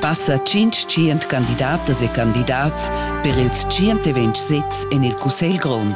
Passa tschintg candidatas e candidats per ils tschient e ventg sezs en il Cussegl grond.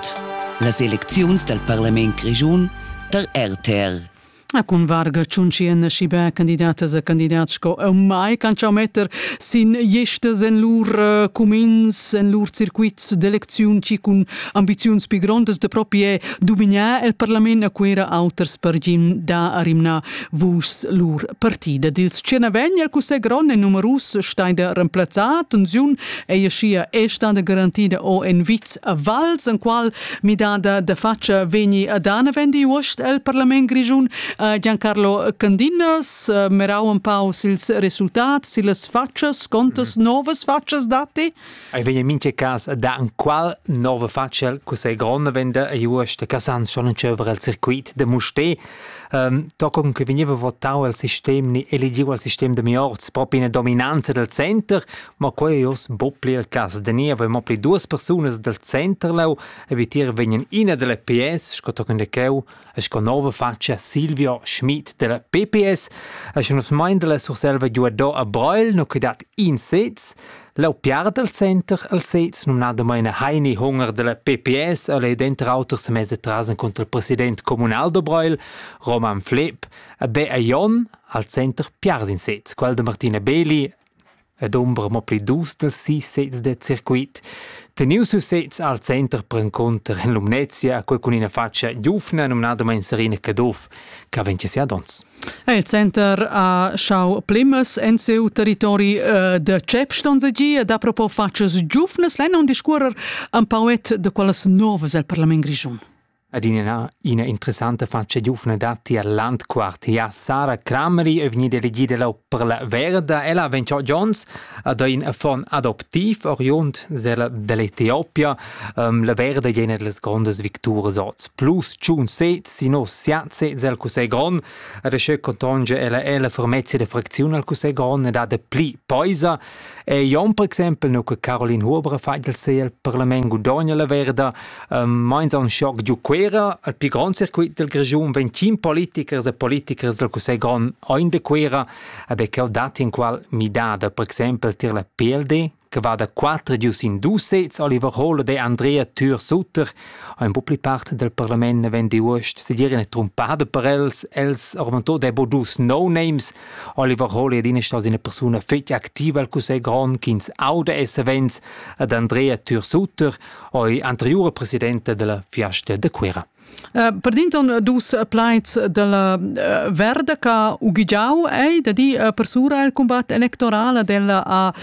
Las elecziuns dal parlament grischun tar RTL. A cun varga tschunschian schi bè candidatas e candidats sco eu mai can chau metter sin jestas en lur uh, cumins, en lur circuits d'elecziun chi cun ambiziuns pi grondas da propi è dumignar el parlament a quera auters per gin da arimna. Vus lur partida dils tschenavegn el cussè gron e numerus stein da remplazzar tensiun ei schia e sta da garantida o en viz a Vals en qual midada da faccia vegni a dana vendi uost el parlament grigiun a Giancarlo Candinas eh, merau un pau sils resultats, sillas faccias, contas mm. novas faccias datti? Ei vegn en mintga cas a dar enqual nova faccia cu sei gronda venda ei uost da Casans schon entscheiver el circuit de Musté. Um, tochen che vegneva votau el sistem ni eligiu al sistem de Miorz propi ina dominanza del center, ma quei ei oz bo pli il cass. Da ni aveva mo pli duas persunas del center leu e vitier vegnan ina delle PS, sco tochen de cheu, e sco nova fatscha Silvio Schmid della PPS e sche nus mein dalla Surselva giuador a Breil no che dat in sez Lau piar del center al sez numnadamain Heini Hunger della PPS e lei denter auter se mese trasen contra il president comunal de Breil, Roman Flepp, e de Aion al center piars in sez, quel de Martina Beli ed ombra mo pli dus dals sis sezs da circuit. Tenius ils sezs al center perencunter en Lumnezia ha quei cun ina faccia giufna numnadamain Serena Caduff che vegn sia dons. Il center ha schau plimas en siu territori eh, da Cep Stonzagi ed ha propo fatgas giufnas lenn on discuorer un pauet de quellas novas el Parlament Grischun. Adina ina interessanta fatscha giuvna datti al Landquart. Ja, Sara Crameri è vegnida elegida lau per la Verda. Ella vegn giò Gions ad ein affon adoptiv, oriund sella dell'Etiopia. Um, la Verda è una delle grandes victories oz. Plus tschun sez, sino siatze sel Cussegl Grond. Ad asceu contonge ella ella fermezza de fracziun al Cussegl Grond e dat pli poisa. E Jon per exempel, nu che Caroline Huber ha fatg il sel, parlament gudogna la verda, ehm, meins a un schoc giu Cuera, al più grande circuit del Grigiun, 25 politichers e politichers del Cussegl grond ein de Cuera, aber che ho dat in qual midada, per exempel tir la PLD, che va da 4 gius in dus sets, Oliver Hohle de Andrea Tür Sutter, ein bu pli part del parlament 92 sedieren e trumpada per els, els ormentò de bo dus no-names, Oliver Holy è ina ina persuna fitg activa al Cussegl grond ch'ins auda e savens ad Andrea Türsutter, oi anteriura presidente della Fiasta de Cuera. Eh, per dinton dus plaids della eh, Verda che uggiau ei da di eh, persura il combat electorale della a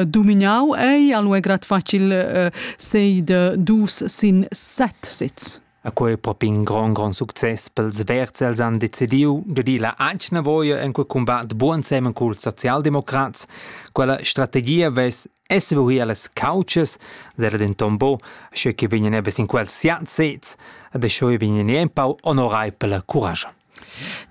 dominau ei, allo è grad facil sei de dus sin set sits. E quei è propi in gran, gran success pels Verds. Els han decidiu de dir la ancna voia en quel combat buon semen cul socialdemocrats. Quella strategia vess essevuir las couches, zera denton bo, sche che vegnan ebes in quels siat sez, e de schoi vegnan empau onorai per la courage.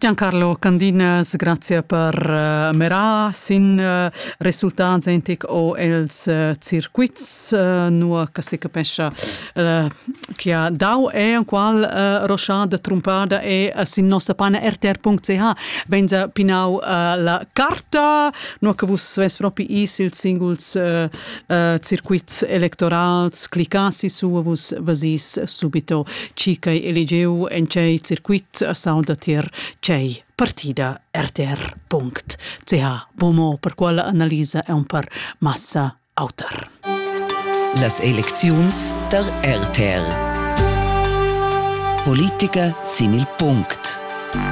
Giancarlo Candinas, grazia per uh, merar sin uh, resultats entic o els uh, circuits uh, nua che si capescha uh, che ha dau e en qual uh, roschada trumpada e uh, sin nossa pana rtr.ch benza pinau uh, la carta nua che vus svess propi is ils singuls uh, uh, circuits electorals cliccassi su vus vasis subito ci che elegeu en cei circuit a sound tier cei partida rtr.ch bomo per quella analisa è un par massa autar las elecziuns der RTR Politiker sin il Punkt